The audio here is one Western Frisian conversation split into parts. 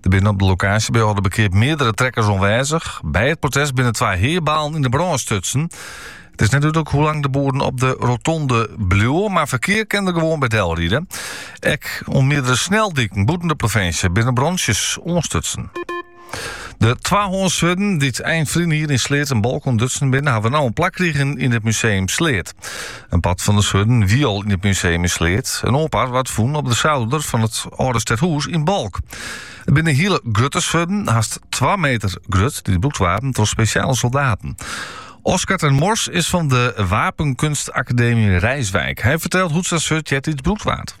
Der binne op de lokaasje by Aldeberkeap meardere trekkers oanwêzich. By it protest binne twa heabalen yn de brân stutsen. It is net dúdlik hoe lang de boeren op de rotonde bliuwe, mar ferkear kin der gewoan by del ride. Ek op meardere sneldiken bûten de provinsje binne brantsjes oanstutsen. De twahânsswurden, dy't ein ferline jier yn Sleat en Balk ûntdutsen binne, hawwe no in plak krigen yn it Museum Sleat. In part fan de swurden wie al yn it museum yn Sleat. In oar part waard fûn op de souder fan it âlde stedhûs yn Balk. It binne hiele grutte swurden, hast twa meter grut, dy't brûkt waarden troch spesjale soldaten. Oskar ter Mors is fan de Wapenkunstakademy Rijswijk. Hy fertelt hoe't sa'n swurd eartiids brûkt waard.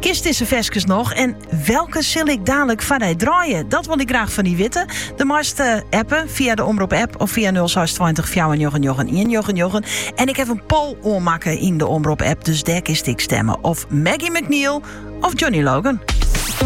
Kinst dizze ferskes noch en welke sil ik dadelik foar dy draaie? Dat wol ik graach fan dy witte. Do meist eh, appe fia de Omrop app of fia 0620 499 199. En ik haw in poll oanmakke yn de Omrop app, dus dêr kinst ek stimme. Of Maggie MacNeal of Johnny Logan.